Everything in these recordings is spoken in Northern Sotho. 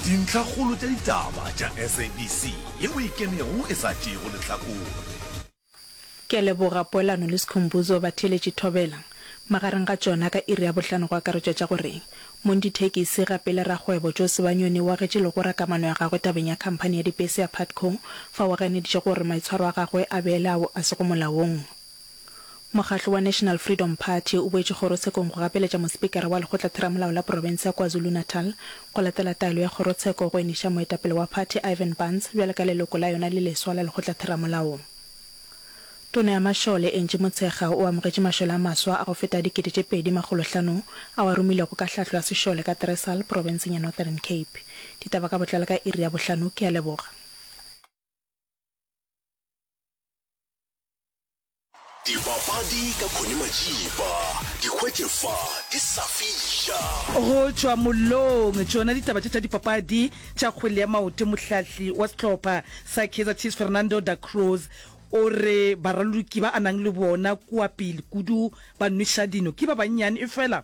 Dintlhakgolo tša ditaba tša SABC ye o e kenego e sa tšeego lehlakore. Ke a leboga poelano le Sikhumbuzo Batheeletši Thobela. Magareng ga tšona ka iri ya bohlano go akaretšwa tša gore, Mondithekisi gape le rakgwebo Joe Sebanyoni o agetše legora kamano ya gagwe tabeng ya khamphani ya dibese ya Putco fa o ganeditše gore maitshwaro a gagwe a beele ao a sego molaong. Mokgatlo wa National Freedom Party o boetše kgorotshekong go gapeletša Mospikara wa Lekgotlatheramolao la Profense ya KwaZulu-Natal go latela taelo ya kgorotsheko go eniša moetapele wa phathi Ivan Barnes bjale ka leloko la yona le leswa la Lekgotlatheramolao. Tona ya Mašole, Angie Motshekga, o amogetše mašole a maswa a go feta a dikete tše pedi makgolo hlano ao a romilwego ka hlahlo ya sešole ka Tresal, profenseng ya Northern Cape. Ditaba ka botlalo ka iri ya bohlano. Ke a leboga. Dipapadi ka Connie Majiba, di hwetše fa di sa fiša. Go tšwa mollong, tšona ditaba tše tša dipapadi tša kgwele ya maoto. Mohlahli wa sehlopha sa Kaizer Chiefs Fernando da Cruz o re baraloki ba a nang le bona kua pele kudu ba nweša dino ke ba bannyane efela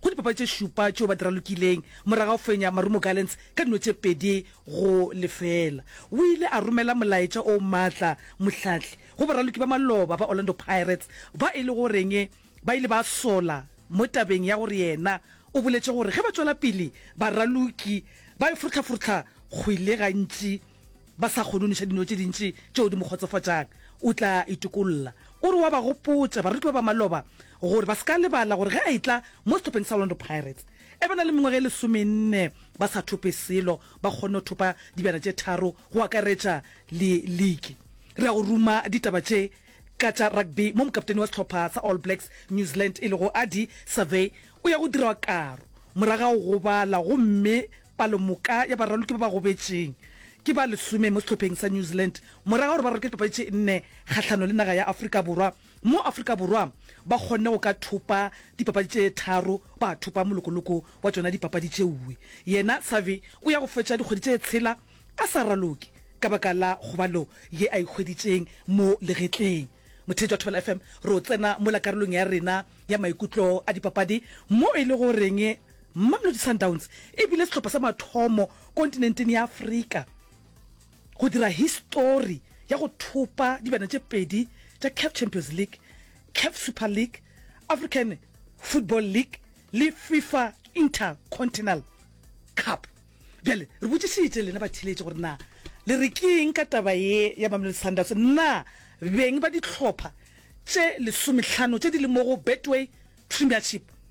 Go dipapadi tše šupa tšeo ba di ralokileng morago ga go fenya Marumo Gallants ka dino tše pedi go lefela, o ile a romela molaetša o maatla mohlahli go baraloki ba maloba ba Orlando Pirates ba e lego goreng ba ile ba sola mo tabeng ya gore yena o boletše gore ge ba tšwela pele baraloki ba e forohlaforohla kgwele gantši ba sa kgone o neša dino tše dintši tšeo di mo kgotsofatšang, o tla itokolola. O re wa ba gopotša baruti ba ba maloba gore ba se ka lebala gore ge a etla mo sehlopheng sa Orlando Pirates e ba na le mengwaga e lesomenne, ba sa thope selo, ba kgonne go thopa dibjana tše tharo go akaretša le liki. Re a go ruma ditaba tše ka tša rugby mo mokapteni wa sehlopha sa All Blacks New Zealand e lego Ardie Savea o ya go dirawa karo moragago go bala gomme Palomoka ya baraloki ba ba gobetšeng ke ba lesome mo sehlopheng sa New Zealand morago ga gore ba raloke dipapadi tše nne kgahlano le naga ya Afrika Borwa, mo Afrika Borwa ba kgonne go ka thopa dipapadi tše tharo ba thopa molokoloko wa tšona dipapadi tše uwe. Yena Savi o ya go fetša dikgwedi tše tshela a sa raloke ka baka la kgobalo ye a e hweditšeng mo legetleng. Motheetši wa Thobela FM, re o tsena mola karolong ya rena ya maikutlo a dipapadi mo e lego goreng Mamelodi Sundowns e bile sehlopha sa mathomo kontinenteng ya Afrika go dira histori ya go thopa dibjana tše pedi tša Caf Champions League, Caf Super League, African Football League le Fifa Intercontinental Cup. Bjale re botšišitše lena batheeletši gore na le re ke'ng ka taba ye ya Mamelodi Sundowns. Na beng ba dihlopha tše lesomehlano tše di le mo go Betway Premiership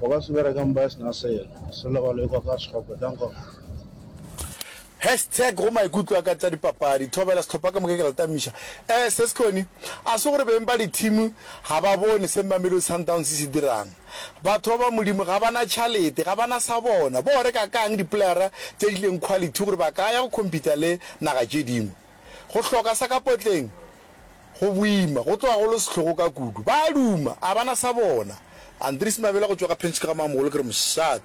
Goba se bereka mpa e sena selo, se lego le ekwa ka sekgopo, bjang gona? Hashtag go maikutlo a ka tša dipapadi thobela sehlopha ka moka ke rata misha eh se sekone a se gore beng ba di team ga ba bone se mamelodi sundowns se dirang batho ba ba modimo ga bana tšhalete ga bana sa bona bo reka kang di playera tše di leng quality gore ba ka ya go compete le naga tše dingwe Go hloka sa ka potleng go boima, go tloga go le sehlogo ka kudu. Ba a duma, a ba na sa bona. Andries Mabela go tšwa ka Pinch ke ga Mamogolo ke re mošat.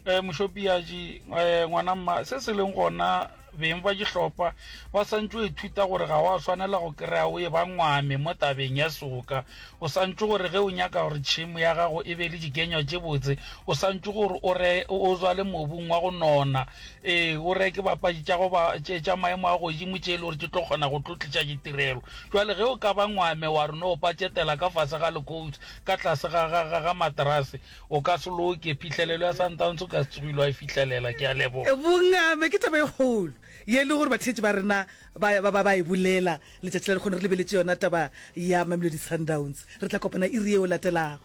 E, Mošopiaji, e, ngwana mma, se se leng gona, beng ba dihlopa ba sa ntše o ithuta gore ga wa swanela go kry-a o e ba ngwame mo tabeng ya soka. O sa ntše gore ge o nyaka gore tšhemo ya gago e be le dikenywa tše botse, o sa ntše gore o re, o zwale mobung wa go nona. Ee, o reke bapadi tša go ba tše tša maemo a godimo tše e le gore tše tlo kgona go tlo tliša ditirelo. Jwale ge o ka ba ngwame wa re no patšetela ka fase ga lekoutsi ka tlase ga, ga, ga, ga materase, o ka se loke. Phihlelelo ya Sundowns o ka se tsogile wa e fihlelela. Ke a leboga. Bongame ke taba e kgolo ye e le gore batheetši ba rena ba, ba, ba, ba e bolela letšatši la lekgono. Re lebeletše yona taba ya Mamelodi Sundowns. Re tla kopana iri ye o latelago.